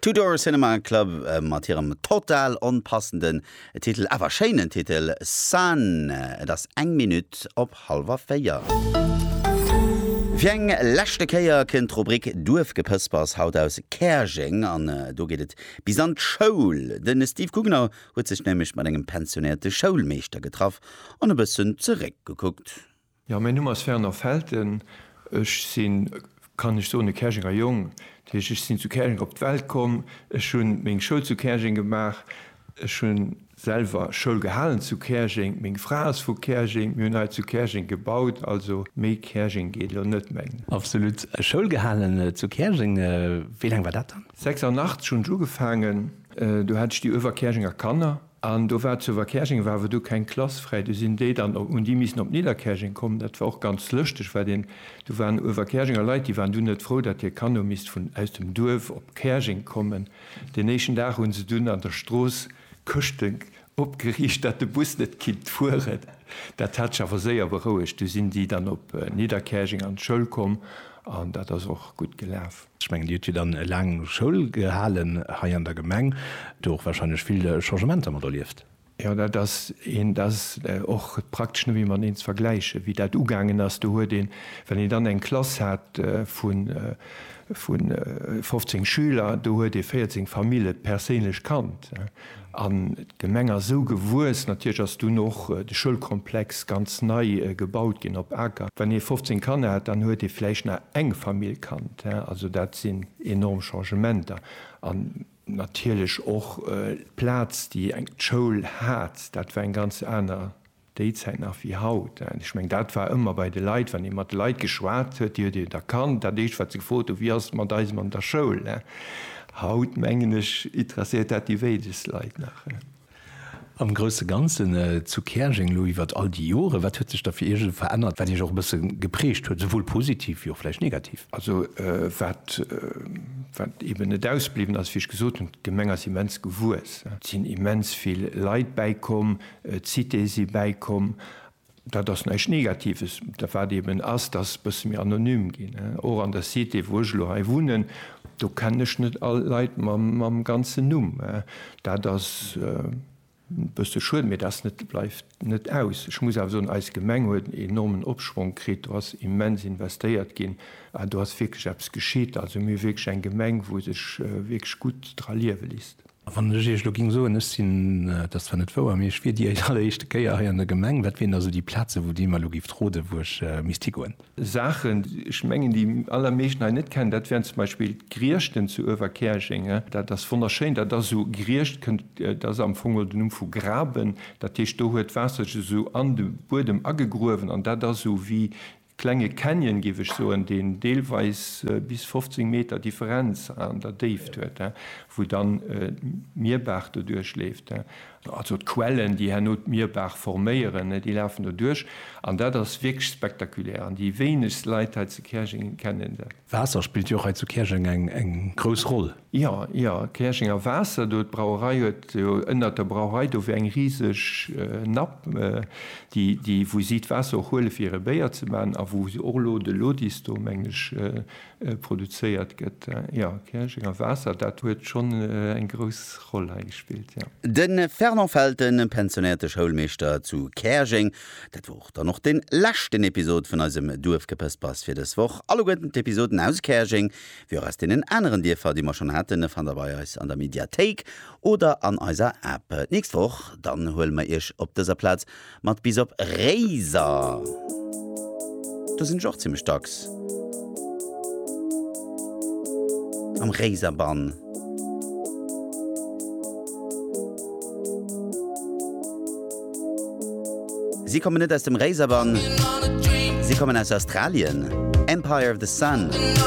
Two Door Cinema Club mat hirem total onpassenden Titel, awer schéinen Titel Sun. Et ass eng Minutt op hallwer véier. Fir eng leschte Kéier kënnt d'Rubrik Duerfgepëspers haut aus Käerjeng an do geet et bis an d'Schoul. De Steve Gugner huet sech nämlech mat engem pensionéierte Schoulmeeschter getraff an e bëssen zeréckgekuckt. Jo, mäin Numm ass Fernand Felten. Ech sinn, kann ech soen, e Käerjenger Jong. Dat heescht, ech sinn zu Käerjeng op d'Welt komm. Ech hu meng Schoul zu Käerjeng gemaach. Ech hu selwer Schoul gehalen zu Käerjeng. Meng Fra ass vu Käerjeng. Mir hunn hei zu Käerjeng gebaut. Also méi Käerjeng geet elo net méi. Absolut. Schoul gehalen zu Käerjeng. Wéi laang war dat dann? 86 hunn ech ugefaangen. Do hat ech déi Uewerkäerjenger Kanner. An do war zu Verkäerjeng war awer du keng Klass fräi, du sinn déi dann op un déi missen op Nidderkäerjeng kommen. Dat war och ganz lëschteg, well deen do waren u Verkäerjenger Leit, déi waren dunn net frou, datt hir Kanno misst vun aus dem Duerf op Käerjeng kommen. Deen éischten Dag hu se dunn an der Strooss Këschte opgeriicht, datt de Bus net kinnt fueren. Dat hat sech awer séier berouegt, du sinn déi dann op Nidderkäerjeng an d'Schoul komm an dat ass och gutt gelaf. Ech mengen, Dir hutt jo dann laang Schoul gehalen hei an der Gemeng, do och warscheinlech vill Changementer mat erlieft. Jo, dat ass een, dat ass och praktesch net méi mateneen ze vergläichen, wéi dat ugaangen ass. Do huet een, well een dann eng Klass hat vu 15 Schüler, do huet ee 14 Famille perséinlech kannt. An d'Gemeng ass esou gewuess, natierlech ass dunn och de Schoulkomplex ganz nei gebaut ginn op Aker. Wann ee 15 Kanner hat, dann huet ee vläicht nach eng Famill kannt. Also dat sinn enorm Changementer. An natierlech och d'Plaz, déi d'Schoul hat, dat war eng ganz aner. Déi Zäit nach wéi haut. Ech meng, dat war ëmmer bei de Leit, wann ee mat de Leit geschwat huet, déi huet een erkannt. Dat Éischt, wat se gefrot hu, Wéi ass et mat eisem an der Schoul? Haut, mengen ech, interesséiert dat déi wéinegst Leit nach. Am grousse Ganzen zu Käerjeng elo iwwert all déi Joren, wat huet sech da fir Iech esou verännert, wat Iech och e bësse geprägt huet, souwuel positiv wéi och vläicht negativ? Also wat eeben net ausbliwwen ass, wéi ech gesot hunn, D'Gemeng ass immens gewuess. Et sinn immens vill Leit bäikomm, D'Cité si bäikomm. Dat ass näischt Negatives. Dat wat eben ass, dass bësse méi anonym ginn. Och an der Cité, wou ech elo hei wunnen, do kennen ech net all Leit mam ganzen Numm. Dat ass e bësse schued, mee dat bleift net aus. Ech muss awer soen, eis Gemeng huet en enormen Opschwong kritt. Do ass immens investéiert ginn an do ass wierklech eppes geschitt. Also mir hu wierklech eng Gemeng, wou sech wierklech gutt dra liewe léisst. Wann ech Iech elo géing soen, ech sinn, dat ass zwar net wouer, mee ech wier déi alleréischte Kéier hei an der Gemeng, wat wieren da sou déi Plazen, wou Dir mer elo géift roden, wou ech misst higoen? Saachen, ech mengen, déi allermeeschten hei net kennen, dat wären zum Beispill d'Griechten zu Uewerkäerjeng. Dat ass wonnerschéin. Dat ass esou, Griecht kënnt, dat ass am Fong geholl den Numm vu graben. Dat heescht, do huet d'Waasser sech esou an de Buedem agegruewen an dat ass esou wéi Klenge Canyon, géif ech soen, deen deelweis bis 15 Meter Differenz an der Déift huet, wou dann d'Mierbaach doduerch leeft. Also d'Quellen, déi herno d'Mierbaach forméieren, déi lafen doduerch. An dat ass wierklech spektakulär. An déi wéinegst Leit hei zu Käerjeng kennen dat. Waasser spillt jo och hei zu Käerjeng eng grouss Roll. Jo, jo, Käerjenger Waasser do, d'Brauerei huet jo ënnert der Brauerei do wär eng riseg Napp, déi, déi, wou si d'Waasser och huele fir hire Béier ze maachen a wou och elo de Lodis do, mengen ech, produzéiert gëtt. Jo, Käerjenger Waasser, dat huet schonn eng grouss Roll hei gespillt, jo. De Fernand Felten, pensionéierte Schoulmeeschter zu Käerjeng. Dat wor dann och de leschten Episod vun eisem Duerfgepëspers fir dës Woch. Alleguerten d'Episoden aus Käerjeng, wéi och aus deenen aneren Dierfer, déi mer schonn haten, fannt der bei eis an der Mediathéik oder an eiser App. D'nächst Woch dann huele mer iech op dëser Plaz mat bis op Réiser. Do sinn ech och zimmlech dacks am Réiser Bann. Si kommen net aus dem Réiser Bann, si kommen aus Australien, Empire of the Sun.